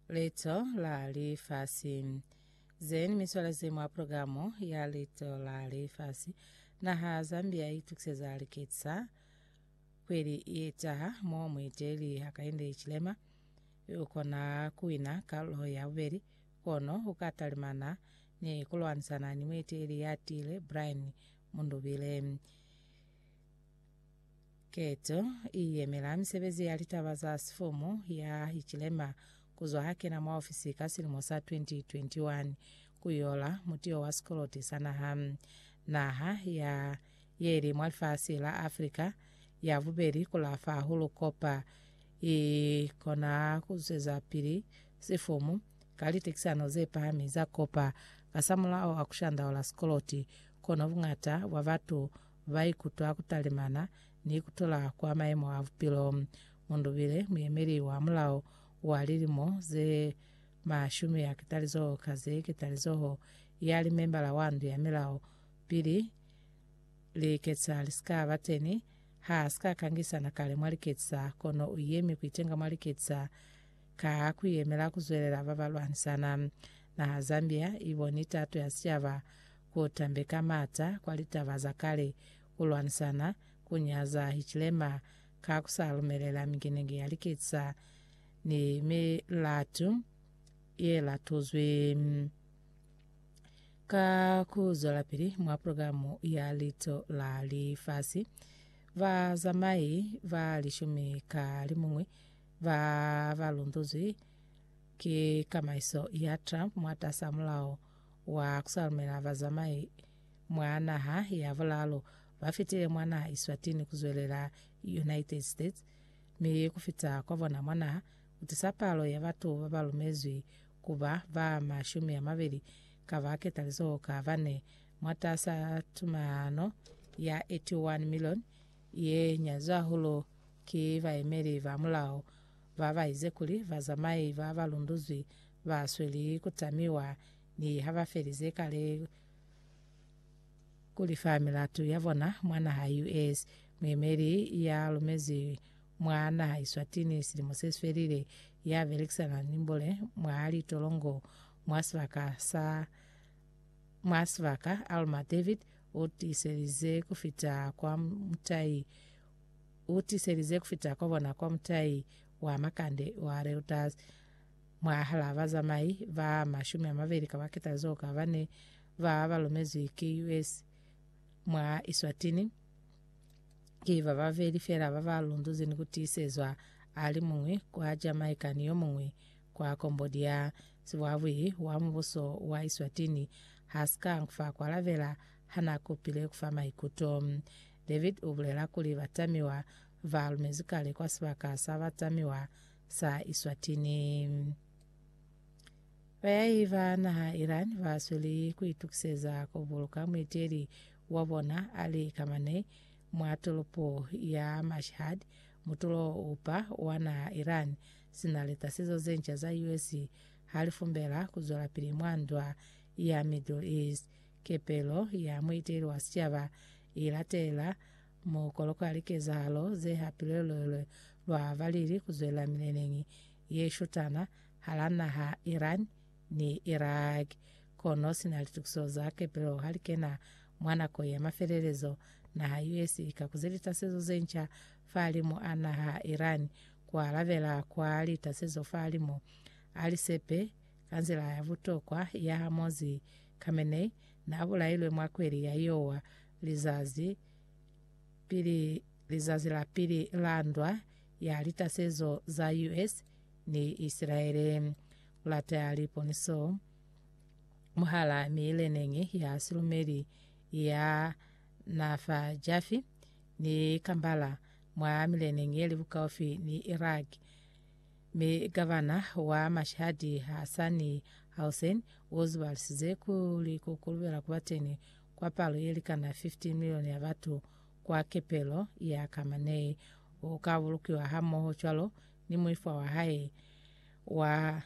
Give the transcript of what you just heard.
Leto la Lifasi. Zeni miswala ze mwa programu ya Leto la Lifasi. Naha Zambia itukiseza liketsa kweli iyetaha mo muiteli Hakainde Hichilema ukona kuwina kalulo ya bubeli kono ukatalimana ni kulwanisana ni muiteli yatile Brian Mundubile. Keto i yemela misebezi ya litaba za sifumu ya Hichilema kuzwa ha kena mwa ofisi ka silimo sa 2021 ku yola mutiyo wa sikoloti sa naha. Naha ya ye li mwa lifasi la Africa ya bubeli ku lafa hahulu kopa i kona ku zweza pili sifumu ka litekisano ze pahami za kopa kasamulao a ku shandaula sikoloti, kono buñata bwa batu ba ikutwa ku talimana ni ku tola kwa mayemo a bupilo. Mu ndubile muyemeli wa mulao wa lilimo ze mashumi ya ketalizoho ka ze ketalizoho ya limembala wa ndu ya milao pili liketsa li si ka ba teni. Ha si ka kangisa na kale mwa liketsa, kono u yemi ku itenga mwa liketsa ka ku yemela ku zwelela ba ba lwanisana. Naha Zambia i boni tato ya sicaba ku tambe ka mata kwa litaba za kale, ku lwanisana, ku nyaza Hitlema ka ku sa lumelela mingenenge ya liketisa ni milatu ye latuzwi. Ka ku zwelapili mwa programu ya Liito la Lifasi, bazamai ba lishumi ka limuñwi ba ba lunduzwi ki kamaiso ya Trump mwatas'a mulao wa kusalumela bazamai mwa naha ya bulalo ba fitile mwa naha Eswatini kuzwelela United States mi kufita kwa bona mwa naha kutisa palo ya batu babalumezwi kuba ba mashumi amabili ka ba ketalizo ka bane mwatasa tumalano ya 81 million ye nyazwa hulu ki baemeli ba mulao ba baize kuli bazamai ba balunduzwi ba sweli ku tamiwa ni ha ba felize kale ku lifa milatu ya bona mwa naha US. Muemeli ya lumezi mwa naha Eswatini silimo se si felile ya belekisana ni mbole mwa litolongo mwa sibaka sa mwa sibaka Alma David u tiselize ku fita kwa mutai u tiselize ku fita kwa bona kwa mutai wa makande wa Reuters Mwahal'a bazamai ba mashumi a mabeli ka baketa zeo ka bane ba ba lumezwi ki US mwa Eswatini, ki ba babeli fela ba ba lunduzi ni ku tiisezwa, a li muñwi kwa Jamaica ni yo muñwi kwa Cambodia. Sibuabwili wa mubuso wa Eswatini ha si ka fa ku alabela ha na kupile ku fa maikuto. David u bulela kuli batamiwa ba lumezwi kale kwa sibaka sa batamiwa sa Iswatini. Bayahi ba naha Iran ba sweli ku itukiseza ku buluka muiteli wa bona Ali Khamenei mwa tolopo ya Mashhad, mutulo upa wa naha Iran, sina litasizo ze nca za US ha li fumbela ku zwelapili mwa ndwa ya Middle East. Kepelo ya muiteli wa sicaba i latelela Muukolo kwa likezahalo ze hapile lwelwe lwa balili ku zwela mileneñi ye shutana hala naha Iran ni Iraq, kono sina litukiso za kepelo ha li kena mwa nako ya mafelelezo, naha US i ka kuze litasezo ze nca fahalimu a naha Iran ku alabela kwa litasezo fahalimu a lisepe ka nzila ya butokwa ya hamozi Khamenei na bulailwe mwa kweli ya Iowa lizazi pili lizazi la pili la ndwa ya litasezo za US ni Isilaele. Ku lateya liponiso mwahal'a miileneñi ya silumeli ya na fa Jafi ni Kambala mwa mileneñi ye li bukaufi ni Iraq, mi gavana wa Mashhadi Hassani Hussein u zibalisize kuli ku kulubela ku ba teñi kwa palo ye likana 15 milioni ya batu kwa kepelo ya ka manei, u ka bulukiwa hamoho cwalo ni muifwa wa hae wa